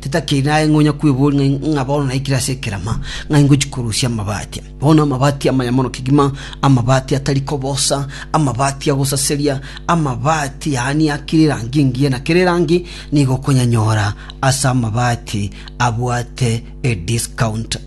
Titakiri naye ng'a onya kweboria ng'a bono naikire ase ekerama, ng'a ingochi korusia amabati. Bono amabati amaya mono kegima, amabati atari kobosa, amabati a gosaseria, amabati yaani a kera erangi engiya na kera erangi, nigo okonyanyora ase amabati abwate ediscount.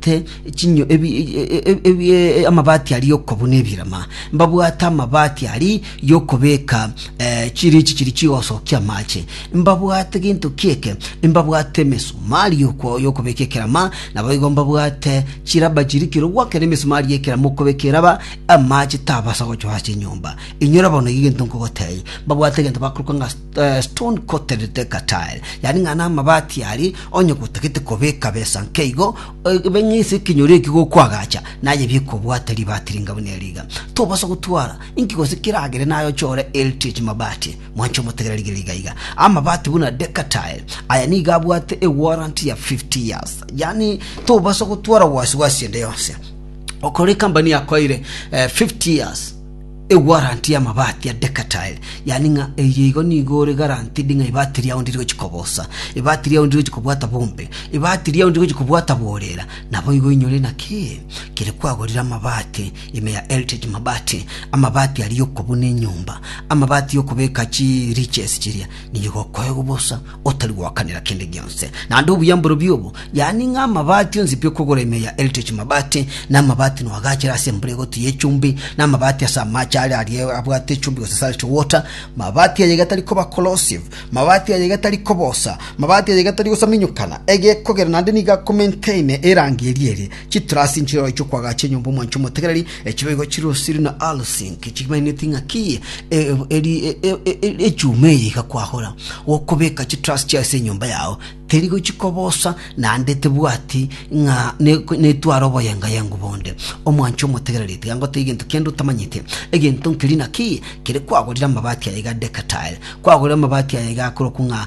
te chinyo ebi, ebi, amabati ari yokobuna ebirema mbabwate amabati ari yokobeka eh, chirichi chiri chigosokia amache mbabwate gento kieke mbabwate emesumari yoko- yokobeka ekerama nabo igo mbabwate chiraba chiri kero gwake na emesumari yekerama okobeka eraba amache tabasa gochwa ase enyomba inyora bono egi gento nkogotei mbabwate egento bakorokwa ng'a The stone coated Thika tile, yaani ng'a namabati aria onye gotagete kobeka besa nkeigo, ebe ng'a ase ekenyoro ekio gokwagacha naye bikobwate ribati ringa buna eri iga. Tobasa gotwara inki gose kiragere naye ochore heritage mabati. Mwanche omotegere rigiya iga iga. Amabati buna Thika tile, aya nigo abwate e warranty ya 50 years. Yaani tobasa gotwara wasi wasi ende yonsi. Okore ekambani yakoeire eh, 50 years. Eguaranti y'amabaati a Decatil, yaani ng'a eyio igo nigo ore guaranteed ng'a ebaati riao ndiri gochia kobosa, ebaati riao ndiri gochia kobwata bombe, ebaati riao ndiri gochia kobwata borera. Naboigo inyore naki? Kere kwagorire amabaati, ime ya Heritage Mabati, amabaati aria y'okobuna enyomba, amabaati y'okobeka chi riches chiria, nigo okoegwa bosa, otari goakanera kende gionse, naende obuya mborobio obo, yaani ng'a amabati onsi pi okogora ime ya Heritage Mabati, na amabati no agachire ase embura egoti y'echumbi, na amabati ase amaache aria aria abwate echumbi gose salty water, mabati aya iga tari koba corrosive, mabati aya iga tari kobosa, mabati aya iga tari gosaminyokana egekogera naende nigo akomaintaine erangi eria ere Chitrasi nchirooro chi'okwagacha enyomba omwancha omotegereri, echibe igo chire osiri na alosinki, chimaineti ng'aki eye, e- eri- e- e- e- e- echuma eye igakwahora gokobeka chitrasi chiaye ase enyomba yao, teri gochika obosa, naende tebwati ng'a ne- netware oboyengayengu bonde. Omwancha omotegereri tiga ngotebie egento kende otamanyeti, egento nkeria naki kere kwagorire amabati aya iga Decatur, kwagorire amabati aya iga akorokwa ng'a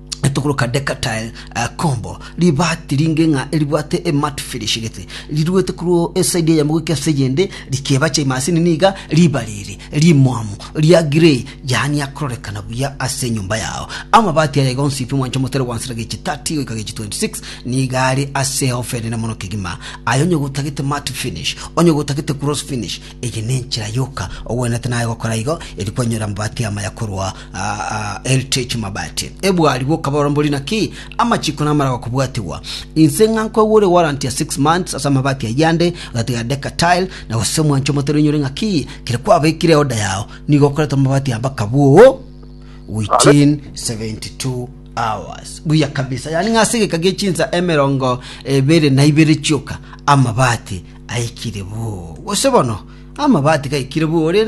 Etogoro ka Decatile combo, ribaati ringe ng'a eribwate ematte finish gete, riruete korwa esaidi eyemo goika ase eyende, rikebacha emasini niga ribare ere rimwamu ria grey, yaani akororekana buya ase enyomba yao. Amabaati aya iga onsifi mwancha omotere gwa nsera gechi 30 goika gechi 26 nigo are ase ehofa enene mono kegima. Aye onye gotagete matte finish, onye gotagete gloss finish, eye nenchera yoka ogwenerete naye gokora igo, erio kwanyora amabaati amaya korwa Aa, Eltech Mabati, ebwari bw'okaborambori naki amachiko namara gokobwatigwa. Inse ng'a nkoigwa ore warrant ya six months ase amabati ayio ande, ogatiga Decker Tile, na gose omwancho omotari onyore ng'a ki kere kwabekire order yao, nigo okoreta amabati amba kabwoo within 72 hours. Buya kabisa, yaani ng'a ase egeka gie chinsa emerongo ebere na ibere chioka amabati aikire bwoo. Gose bono amabati gaikire bwoo ore